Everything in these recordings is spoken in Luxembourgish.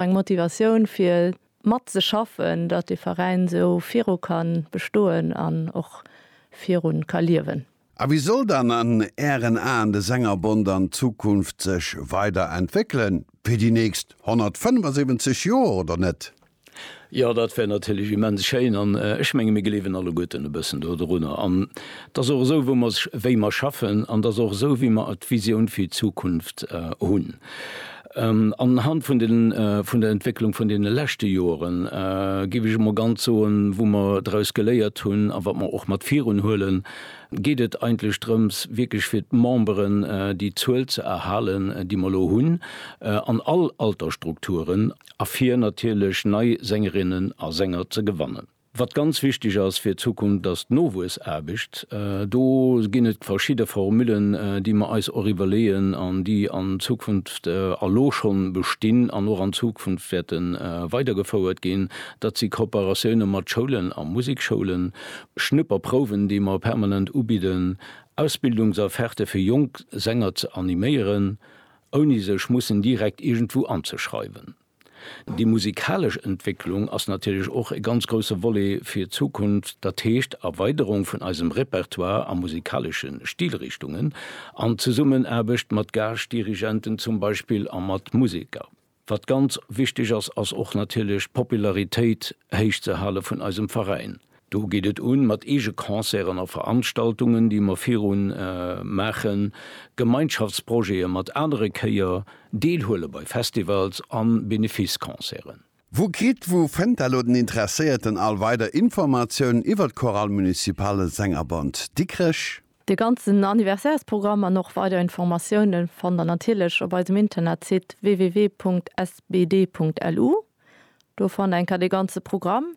Eng Motivatioun fir mat ze schaffen, datt de Veräin esou viru ka bestoen an och viru ka liewen. A wéi soll dann an Ären Aen de Sängerbond an Zukunft sech weider entwéckelen? Fir déi nächst 175 Joer, oder net? Jo, dat wär natierlech immens schéin. An ech menge mir gleewen alleguerten e bëssen do drunner. An et ass och esou, wou mer, wéi mer schaffen, an et ass och esou, wéi mer d'Visioun fir d'Zukunft hunn. An Hand vun den, vun der Entwécklung vun deene leschte Joren, géif ech emol ganz soen, wou mer draus geléiert hunn a wat mer och mat virun huelen, geet et eigentlech drëms, wierklech fir d'Memberen déi Zuel ze erhalen, déi mer elo hunn, an all Altersstrukturen, a fir natierlech nei Sängerinnen a Sänger ze gewannen. Wat ganz wichteg ass fir d'Zukunft, ass d'Nowuessaarbecht. Do ginn et verschidde Formullen, déi mer eis och iwwerleeën an déi an Zukunft elo scho bestinn an och an Zukunft wäerte weidergefouert ginn. Dat si Kooperatioune mat Schoulen a Musekschoulen, Schnupperprouwen, déi mer permanent ubidden, Ausbildungsofferte fir jonk Sänger ze animéieren, ouni sech mussen direkt iergendwou anzeschreiwen. Déi musikalesch Entwécklung ass natierlech och e ganz grousse Volet fir d'Zukunft, dat heescht Erweiderung vun eisem Repertoire a musikalesche Stilrichtungen an Zesummenaarbecht mat Gaaschdirigenten zum Beispill a mat Museker. Wat ganz wichteg ass, ass och natierlech d'Popularitéit héich ze hale vun eisem Veräin. Do geet et un mat eege Concerten a Veranstaltungen, déi mer viru maachen, Gemeinschaftsprojete mat anere Chéier, deelhuele bei Festivals a Benefice-Concerten. Wou kritt, wou fënnt elo den Interesséierten all weider Informatiounen iwwer d'Chorale Municipale Sängerbond Dikrech? De ganzen Anniversairsprogramm an och weider Informatiounen fannt der natierlech op eisem Internetsite www.sbd.lu. Do fannt eng Kéier de ganze Programm.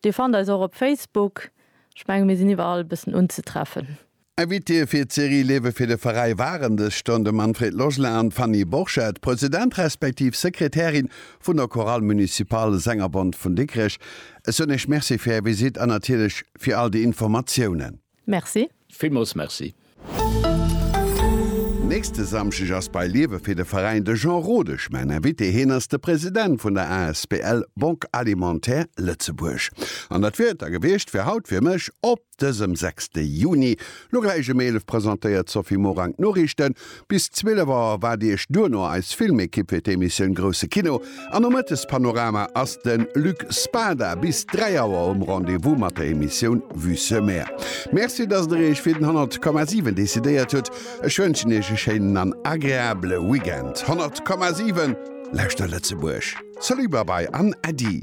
Dir fannt eis och op Facebook. Ech menge mir sinn iwwerall e bëssen unzetreffen. Invitée fir d'Serie Lewe fir de Veräi waren dës Stonn de Manfred Logelin an d'Fanny Borchert, President respektiv Sekretärin vun der Chorale Municipale Sängerbond vun Dikrech. Ech soen Iech Merci fir Är Visite an natierlech fir all déi Informatiounen. Merci. Villmools Merci. Nächste Samschdeg ass bei Liewe fir de Veräin de Jean Rodesch mäin Invité. Hien ass de President vun der asbl Banque Alimentaire Lëtzebuerg. An dat wier et da gewiescht fir haut fir mech op dësem sechste Juni. Lo gläich ëm 11 presentéiert d'Sophie Morang d'Noriichten. Bis 12 Auer waart iech duerno eis Filmekipp fir d'Emissioun Grousse Kino an um Mëttespanorama ass de Luc Spada bis 3 Auer um Rendez-vous mat der Emissioun Vue sur Mer. Merci, dass der iech fir den 100,7 decidéiert hutt. Ech wënschen iech e schéinen an agreabele Weekend. 100,7 Lauschter Lëtzebuerg! Salut, Babai an Äddi!